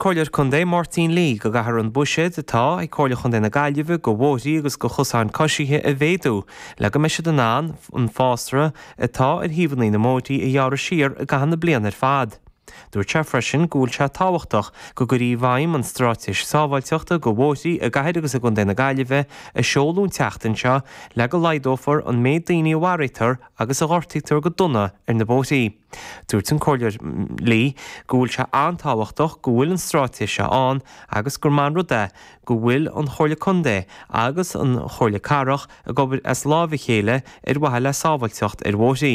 Comhairleoir Contae, Máirtín Lee, go gcaithfear an buiséad atá ag Comhairle Chontae na Gaillimhe go bhóithrí agus go chosáin coisithe a mhéadú le go mbeidh siad in ann an fásra atá ar thaobhannaí na mbóithrí a ghearradh siar i gcaitheamh na bliana ar fad. Dúirt sé freisin go bhfuil sé tábhachtach go gcuirfí i bhfeidhm an stráitéis sábháilteachta go bhóithrí i gCathair agus i gContae na Gaillimhe a seoladh an tseachtain seo le go laghdófar an méid daoine a mharaítear agus a ghortaítear go dona ar na bóithrí. Dúirt an Comhairleoir Lee go bhfuil sé an-tábhachtach go bhfuil an stráitéis seo ann agus gur maith an rud é go bhfuil an Chomhairle Contae agus an Chomhairle Cathrach ag obair as lámha a chéile ar mhaithe le sábháilteacht ar bhóithrí.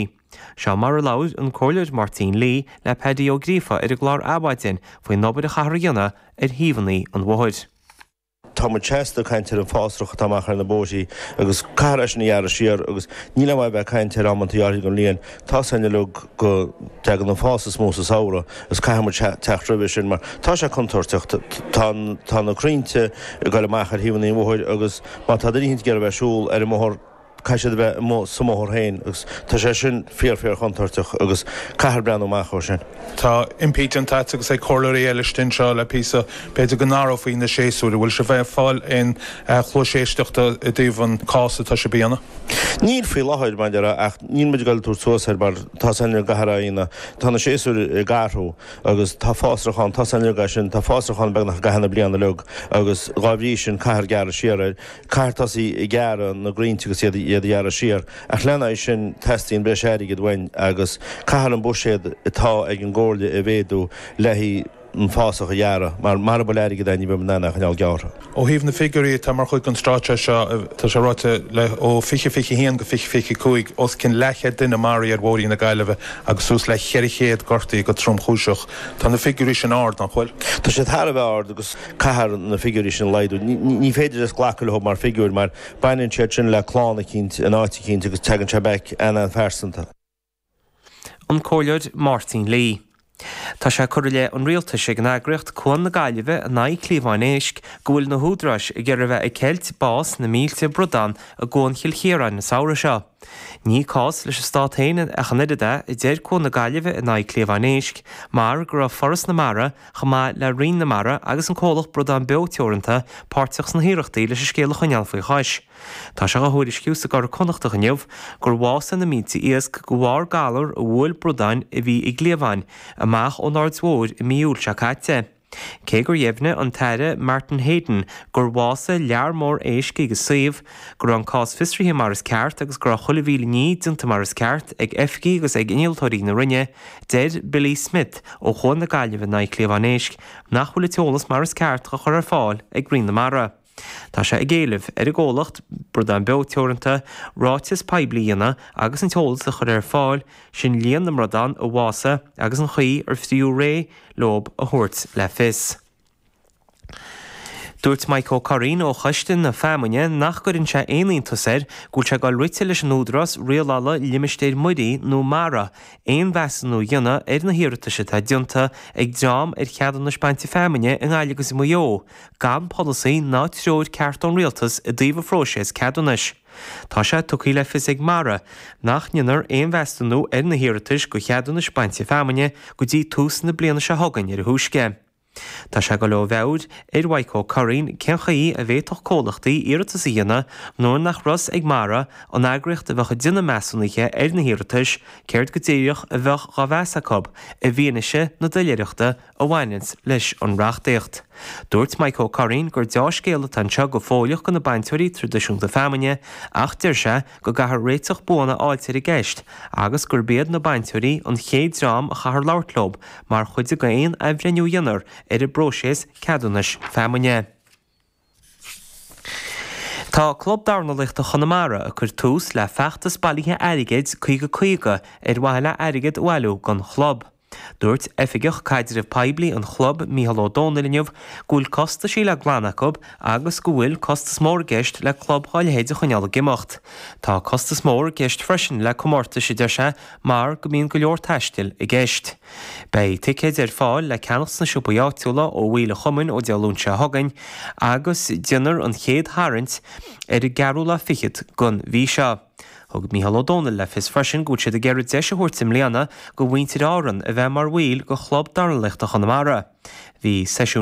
Seo mar a labhair an Comhairleoir Máirtín Lee le Paddy Ó Gríofa ar an gclár Adhmhaidin faoin obair a chaithfear a dhéanamh ar thaobhannaí an bhóthair. Tá muid seasta ag caint ar an fásrach atá amach ar na bóithrí agus caithfear é sin a ghearradh siar agus níl aon mhaith a bheith ag caint ar amanntaí áirithe den bhliain. Tá a fhios againn uilig go dteagann an fás is mó sa samhradh agus caithfidh muid teacht roimhe sin mar tá sé contúirteach. Tá na crainnte ag goil amach ar thaobhannaí an bhóthair agus má tá daoine ag iarraidh a bheith ag siúl ar an mbóthar caithfidh siad a bheith amuigh sa mbóthar féin agus tá sé sin fíor fíor chontúirteach agus caithfear breathnú amach dhó sin. Tá impí déanta agat agus ag comhairleoirí eile stinn seo le píosa, b'fhéidir go n-athrófaí na séasúir. An bhfuil sibh ag fáil aon chluais éisteachta i dtaobh an cás atá sibh a dhéanamh? Níl faoi láthair, mar a déarfá, ach níl muid ag goil ag tabhairt suas air mar tá a fhios againn go gcaithfear é a dhéanamh, tá na séasúir ag athrú agus tá fásrach ann, tá a fhios againn uilig é sin, tá fásrach ann beagnach i gcaitheamh na bliana uilig agus dhá bhrí sin caithfear gearradh siar air. Caithfear tosaí ag gearradh na gcrainnte agus iad a ghearradh siar. Ach lena aghaidh sin teastaíonn breis airgid uainn agus caithfear an buiséad atá ag an gComhairle a mhéadú le haghaidh an fásach a ghearradh mar mara bhfuil airgead againn ní bheidh muid in ann é a choinneáil gearrtha. Ó thaobh na figiúirí atá mar chuid den stráitéis seo tá sé ráite le ó 2021 go 2025 os cionn leathchead duine a maraíodh ar bhóithrí na Gaillimhe agus suas le 400 gortaíodh go tromchúiseach. Tá na figiúirí sin ard, nach bhfuil? Tá siad thar a bheith ard agus. Caithfear na figiúirí sin a laghdú. Ní féidir just glacadh leo mar figiúir mar baineann siad sin le clann eicínt in áit eicínt agus teagann sé back ana-phearsanta. An Comhairleoir Máirtín Lee, Tá sé curtha i leith an Rialtais ag an eagraíocht Cuan na Gaillimhe in aghaidh Cliabháin Éisc go bhfuil na húdaráis ag iarraidh a bheith ag ceilt bás na mílte bradán i gCuan Chill Chiaráin an samhradh seo. Ní cás leis an Stát féin ach an oiread é, a deir Cuan na Gaillimhe in aghaidh Cliabháin Éisc, mar go raibh Foras na Mara, chomh maith le Roinn na Mara agus an comhlacht Bradán Beo Teoranta, páirteach sna hiarrachtaí leis an scéal a choinneáil faoi chois. Tá sé á thuairisciú sa gCuradh Connachtach inniu gur bhásaigh na mílte iasc de bharr galar a bhuail bradáin a bhí i gcliabháin amach ón Aird Mhóir i mí Iúil seo caite. Cé gur dheimhnigh an tAire Martin Heydon gur bhásaigh lear mór éisc ag an suíomh, go raibh an cás fiosraithe mar is ceart agus go raibh chuile mhíle ní déanta mar is ceart ag oifigigh agus ag innealtóirí na Roinne, deir Billy Smith ó Chuan na Gaillimhe in aghaidh cliabhán éisc nach bhfuil an t-eolas mar is ceart á chur ar fáil ag Roinn na Mara. Tá sé ag éileamh ar an gcomhlacht, Bradán Beo Teoranta, ráiteas poiblí a dhéanamh agus an t-eolas a chur ar fáil, sin líon na mbradán a bhásaigh agus an chaoi ar fritheadh réidh leo a thabhairt le fios. Dúirt Mike Ó Curraoin ó Choiste na Feamainne nach gcuireann sé aon iontas air go bhfuil sé ag dul rite leis an Údarás Rialála Limistéir Muirí nó mara aon mheasúnú a dhéanamh ar na hiarratais atá déanta ag dream ar cheadúnais bainte feamainne i nGaillimh agus i Maigh Eo gan polasaí ná treoir ceart ón Rialtas i dtaobh an phróisis ceadúnais. Tá sé tugtha le fios ag mara nach ndéanfar aon mheasúnú ar na hiarratais do cheadúnais bainte feamainne go dtí tús na bliana seo chugainn ar a thúisce. Tá sé ag dul ó mheabhair ar Mhaidhc Ó Curraoin cén chaoi a bhféadfadh comhlachtaí iarratas a dhéanamh nuair nach raibh a fhios ag mara, an eagraíocht a bheadh ag déanamh measúnuithe ar na hiarratais, céard go díreach a bheadh dhá mheas acu, i bhfianaise na doiléireachta a bhaineanns leis an reachtaíocht. Dúirt Mike Ó Curraoin gur deá-scéal atá anseo go fóilleach do na bainteoirí traidisiúnta feamainne ach deir sé go gcaithfear réiteach buan a fháilt ar an gceist agus gurb iad na bainteoirí an chéad dream a chaithfear labhairt leo mar chuid de aon athbhreithniú a dhéanfar ar an bpróiseas ceadúnais feamainne. Tá Club Dornálaíochta Chonamara ag cur tús le feachtas bailithe airgid 50 50 ar mhaithe le airgead a bhailiú don chlub. Dúirt Oifigeach Caidrimh Poiblí an chlub, Micheál Ó Domhnaill inniu go bhfuil costaisí le glanadh acu agus go bhfuil costas mór i gceist le club dá leithéid a choinneáil ag imeacht. Tá costas mór i gceist freisin le comórtais a deir sé mar go mbíonn go leor taistil i gceist. Beidh ticéid ar fáil le ceannacht sna siopaí áitiúla ó bhaill an chumainn ó Dé Luain seo chugainn agus déanfar an chéad tharraingt ar an gceathrú lá fichead den mhí seo. Thug Micheál Ó Domhnaill le fios freisin go bhfuil siad ag iarraidh deis a thabhairt i mbliana do mhuintir Árann a bheith mar bhaill de Chlub Dornálaíochta Chonamara. Bhí seisiún.